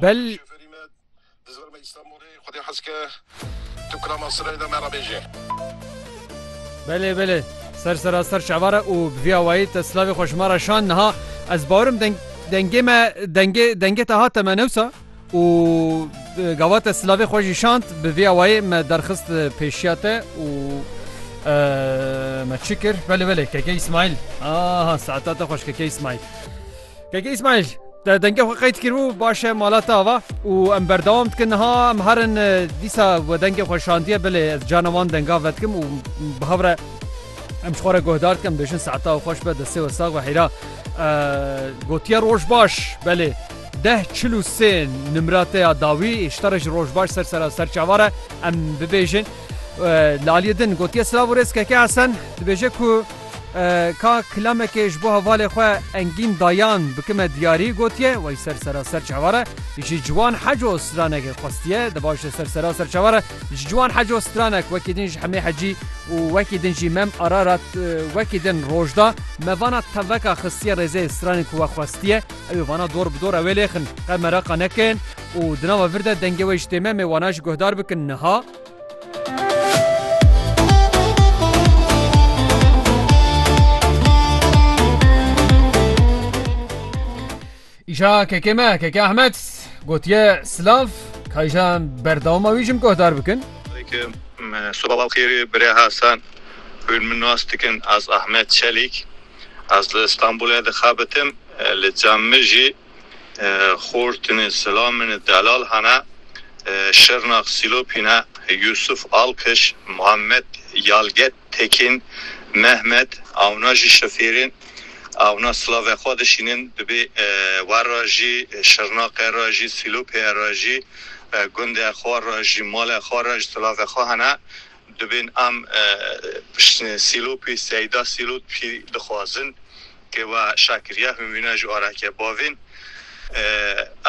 Bel Belê belê ser sera ser şevara û bi vî awayî te silavê xwe ji me re şand niha ez bawerim deng dengê me dengê dengê te hate me newsa û gava te silavê xwe jî şand bi vê awayê me derxist pêşiya te û me çi kir belê belê keke îsmaîl aha saeta te xweş keke îsmaîl keke îsmaîl Te dengê xwe qeyt kiribû baş e mala te ava û em berdewam dikin niha em herin e, dîsa we dengê xwe şandiye belê ez cana wan denga vedikim û bi hev re em ji xwe re guhdar dikim bêjin saeta xweş be destê we sax be heyra e, gotiye roj baş belê Deh çil û sê nimra te ya dawî îşta re ji rojbaş ser sera ser çavar e em bibêjin. Li aliyê din gotiye silav û rêz Keke Hesen dibêje ku ka kilamekê ji bo hevalê xwe Engîn Dayan bikime diyarî gotiye wey ser sera ser çavar e ji ciwan heco stranekê xwestiye di baş de ser sera ser çavar e ji ciwan heco stranek wekî din ji Hemê Hecî û wekî din jî Mem Ararat wekî din roj da me vana teveka xistiye rêzê stranê ku we xwestiye Ew ê vana dor bi dor ew ê lêxin, qe mereqa nekin û di nava vir de dengê wê ji tême mê wana jî guhdar bikin niha. Îşa kekê me kekê Ahmet gotiye silav kayjan berdawama wî jim guhdar bikin. Soba xêrê birê Hasan hûn min nas dikin ez Ahmet Çelîk. Ez li Stenbolê dixebitim, li cem min jî Xortinê, Silaminê, Delal hene, Şirnax, Sîlopî ne, Yûsuf, Alkiş, Muhammed, Yalget, Tekîn, Mehmet, ewna jî şofêrên ewna silavê xwe dişînin, dibê we re jî, Şirnaxê re jî, Sîlopê re jî, gundê xwe re jî, malê xwe re jî silavê xwe hene, Dibên em sîlopê Seyda Sîlotpî dixwazin ke we aşa kiriye himîna ji arake bavên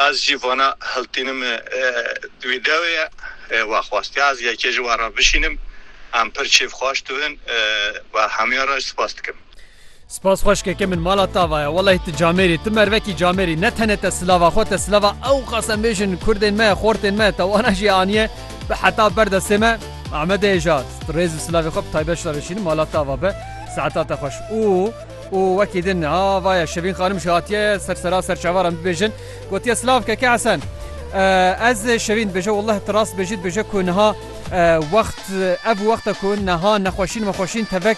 ez jî vana hiltînim wî dawê ye we xwastiye ez yekê ji we re bişînim em pir kêfxwaş dibin we hemiyan re spas dikim. Spas xweşkeke min mala tava ye wellahî tu camêrî tu mervekî camêrî ne tenê te silava xwe te silava ew qasemêjin kurdên me xortên me te wana jî aniye bi heta ber destê me Amedê hêja rêz û silavê xwe bi taybet ji te veşînim mala tava be saeta te xweş û û wekî din ha vaye şevîn xanim jî hatiye ser sera ser çavara min bibêjin gotiye silav keke hesen ez şevîn dibêje wellahî tu rast dibêjî dibêje ku niha wext ev wexta ku niha nexweşîn mexweşîn tevek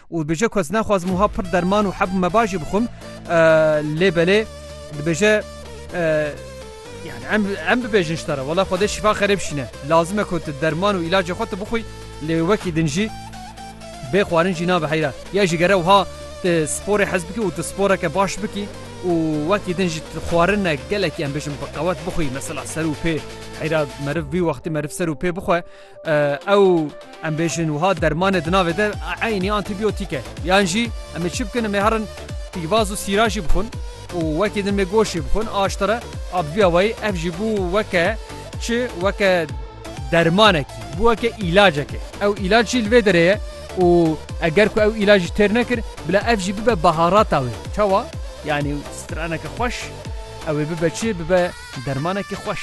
Û dibêje ku ez naxwazim wiha pir derman û heb û meba jî bixwim lê belê dibêje yani em bibêjin ji te re wela Xwedê şîfa xerê bişîne. Lazim e ku tu derman û îlacê xwe tu bixwî lê wekî din jî bê xwarin jî nabe heyra. Ya jî gere wiha tu sporê hez bikî û tu sporeke baş bikî û wekî din jî xwarinek gelekî em bêjin bi qewet bixwî mesela ser û pê heyra meriv vî wextî meriv ser û pê bixwe Ew em bêjin wiha dermanê di navê de eynî antîbiyotîk e. Yan jî em ê çi bikin em ê herin pîvaz û sîra jî bixwin û wekî din mê goşê bixwin a ji te re a bi vî awayî ev jî bû weke çi weke dermanekî bû weke îlacekê. Ew îlac jî li vê derê ye û eger ku ew îlac jî têr nekir bila ev jî bibe baharata wê. Çawa? Yanî straneke xweş ew ê bibe çi bibe dermanekî xweş.